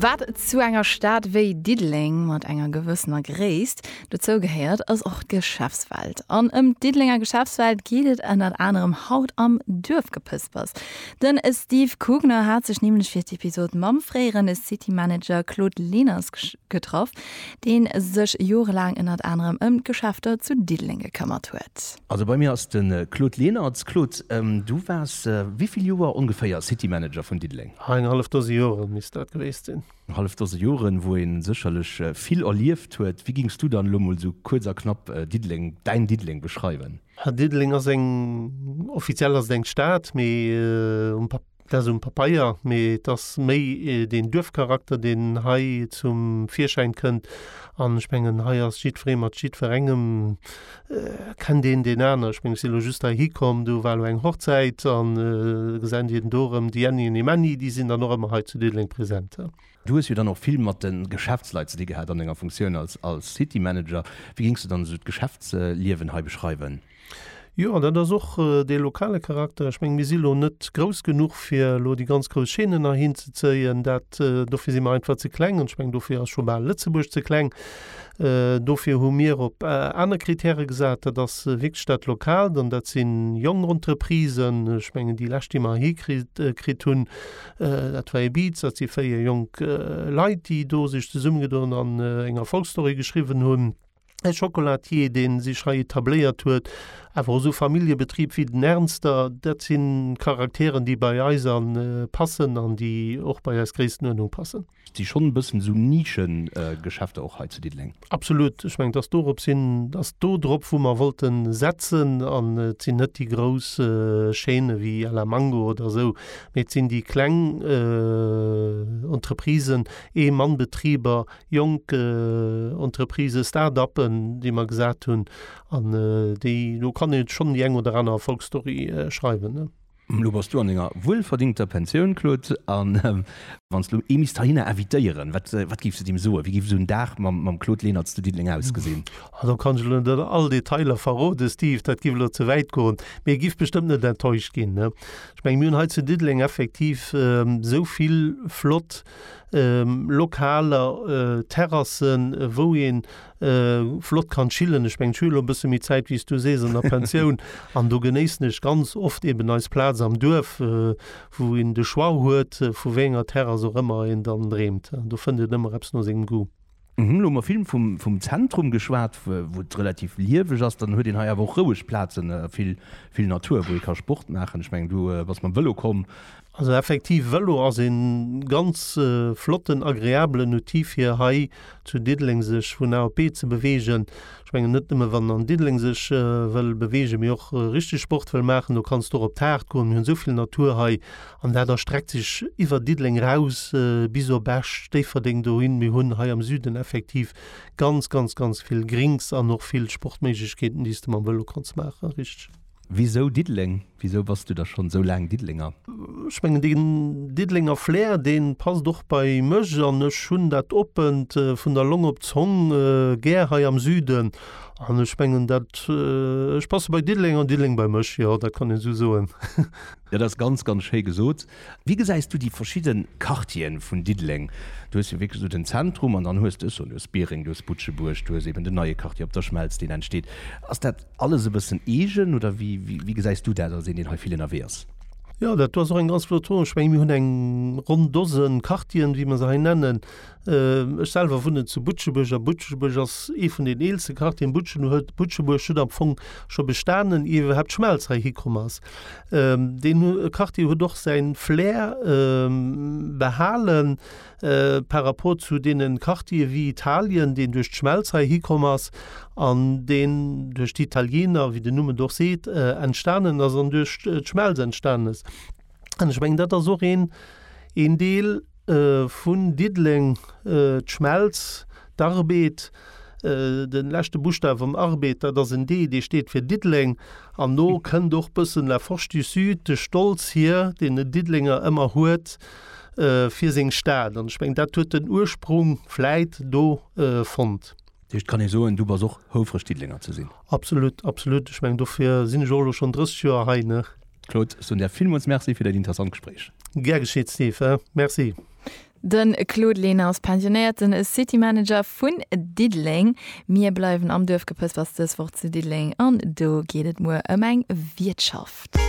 Wat zu enger Stad wéi Diddeleng mat enger gewëssener Gréisst dozou gehéiert, ass och d'Geschäftswelt. An ëm d'Diddelenger Geschäftswelt geet et ënnert anerem haut am Duerfgepëspers. Den Steve Kugner hat sech nämlech fir d'Episod mam fréieren City Manager Claude Leners Getraff, dee sech jorelaang ënnert anerem ëm d'Geschäfter zu Diddeleng gekëmmert huet. Also bei mir ass de Claude Lenert. Claude, du waars wéi vill Joer ongeféier City Manager vun Diddeleng? Ah, eng hallef Dose Jore misst dat gewiescht sinn. Eng hallef Dose Joren, wou ee sécherlech vill erlieft huet. Wéi géings du dann elo mol esou kuerz a knapp Diddeleng, däin Diddeleng beschreiwen? Diddeleng ass eng, offiziell ass et eng Stad, mee um Papier. Dat ass um Papeier, mee et ass méi deen Duerfcharakter, deen hei zum Virschäin kënnt. An ech mengen, hei ass jiddweree mat jiddwerengem, kennt een deen aner. Ech mengen, ech si elo just heihi komm, do war elo eng Hochzäit an gesait ierden do erëm déi Anni an dee Männi, déi sinn dann och ëmmer hei zu Diddeleng präsent. Du hues jo dann och vill mat de Geschäftsleit ze di gehat an denger Funktioun als City Manager. Wéi géings du dann esou d'Geschäftsliewen hei beschreiwen? Jo, dat ass och dee lokale Charakter. Ech mengen, mir si lo net grouss genuch, fir elo déi ganz grouss Chaînen heihin ze zéien. Dat, dofir si mer einfach ze kleng. An ech mengen, dofir ass scho bal Lëtzebuerg ze kleng. Dofir hu mir op aner Kritäre gesat. Dat ass wierklech dat Lokaalt. An dat si jonk Entreprisen. Ech mengen, déi lescht, déi mer hikritt, kritt hunn, dat war Ibiza. Dat si véier jonk Leit, déi do sech zesummegedoen an eng Erfolgsstory geschriwwen hunn. e Chocolatier, dee sech hei etabléiert huet, awer och esou Familljebetrib wéi den Ernster, dat si Charakteren, déi bei eis an passen an déi och bei eis Gréisstenuerdnung passen. Et si schonn e bëssen esou Nischegeschäfter och hei zu Diddeleng. Absolut. Ech mengen, et ass dorop sinn, et ass do drop, wou mer wollte setzen an et sinn net déi grouss Chaîne wéi à la Mango oder esou, mee et sinn déi kleng Entreprisen, Ee-Mann-Betriber, jonk Entreprisë, Start-uppen, déi mer gesat hunn, an déi, do kann ee schonn déi eng oder aner Erfolgsstory schreiwen. Elo bass du an denger wuelverdingter Pensioun, Claude, a wann s de elo ee misst heihinner invitéieren, wat, wat géifs de deem soen? Wéi géif esou en Dag mam Claude Lenert zu Diddeleng ausgesinn? Ah, do kann ech elo net all Detailer verroden, Steve, dat géif elo ze wäit goen, mee e géif bestëmmt net enttäuscht ginn. Ech mengen, mir hunn hei zu Diddeleng effektiv esou vill flott lokaler Terrassen, wou ee flott kann chillen. Ech mengen, ech hu jo elo e bësse méi Zäit, wéi s du sees, an der Pensioun. An do genéissen ech ganz oft eeben eis Plaz am Duerf, wou een de Choix huet, vu wéi enger Terrass och ëmmer een dann dreemt. Do fënnt een ëmmer eppes no sengem Goût. Mir hunn elo vill vum Zentrum geschwat, wou et relativ lieweg ass. Dann huet een hei awer och roueg Plazen, vill Natur, wou ee ka Sport maachen. Ech mengen, du bass mam Vëlo komm. Also effektiv, Vëlo ass ee ganz flotten, agreabelen Outil, fir hei zu Diddeleng sech vun A op B ze beweegen. Ech mengen, net nëmme wann en an Diddeleng sech wëll beweegen, mee och richteg Sport wëll maachen. Do kanns du och op d'Haard goen. Mir hunn esou vill Natur hei. An dat erstreckt sech iwwer Diddeleng eraus bis op Esch, Déifferdeng dohin. Mir hunn hei am Süden effektiv ganz, ganz, ganz vill Grinks an och vill Sportméiglechkeeten, déi s de mam Vëlo kanns maachen. Richteg. Wisou Diddeleng? Wisou bass du da schonn esou laang Diddelenger? Ech mengen, deen Diddelenger Flair, dee passt och bei mech. An ech hunn dat Oppent vun der Long op d'Zong gär hei am Süden. An ech mengen, dat, ech passe bei Diddeleng an Diddeleng bei mech. Jo, dat kann een esou soen. Dat ass ganz, ganz schéi gesot. Wéi gesäis du déi verschidde Quartieren vun Diddeleng? Du hues jo wierklech esou den Zentrum an dann hues de, ech soen, du hues Biereng, du hues Butschebuerg, du hues eben den neie Quartier op der Schmelz, deen entsteet. Ass dat alles e bëssen eegen oder wéi, wéi gesäis du dat als een, deen hei vill ënnerwee ass? Jo, dat do ass och eng ganz flott Fro. Ech mengen, mir hunn eng ronn Dose Quartieren, wéi mer se hei nennen. Ech selwer wunnen zu Butschebuerg a Butschebuerg ass ee vun den eelste Quartieren. Butschebuerg huet am Fong scho bestanen, ier iwwerhaapt d'Schmelz hei hikomm ass. Deen Quartier huet och säin Flair behalen par rapport zu deene Quartiere wéi Italien, deen duerch d'Schmelz hei hikomm ass an deen duerch d'Italiener, wéi den Numm et och seet, entstanen ass an duerch d'Schmelz entstanen ass. An ech mengen, dat ass och een Deel. Vun Diddeleng, d'Schmelz, d'Arbed, den leschte Buschtaw vum Arbed, dat ass en D, dee steet fir Diddeleng. An do kënnt och bëssen La Forge du Sud, de Stolz hier, deen den Diddelenger ëmmer huet fir seng Stad. An ech mengen, dat huet den Ursprung vläit do fonnt. Dat heescht, kann ee soen, du bass och houfreg Diddelenger ze sinn? Absolut, absolut. Ech mengen, dofir sinn ech och elo schonn 30 Joer hei, ne? Claude, ech soen der villmools Merci fir dat interessant Gespréich. Gär geschitt, Steve. Merci. De Claude Lehner ass pensionéierten City Manager vun Diddeleng. Mir bleiwen am Duerfgepëspers, dës Woch zu Diddeleng, an do geet et muer ëm eng Wiertschaft.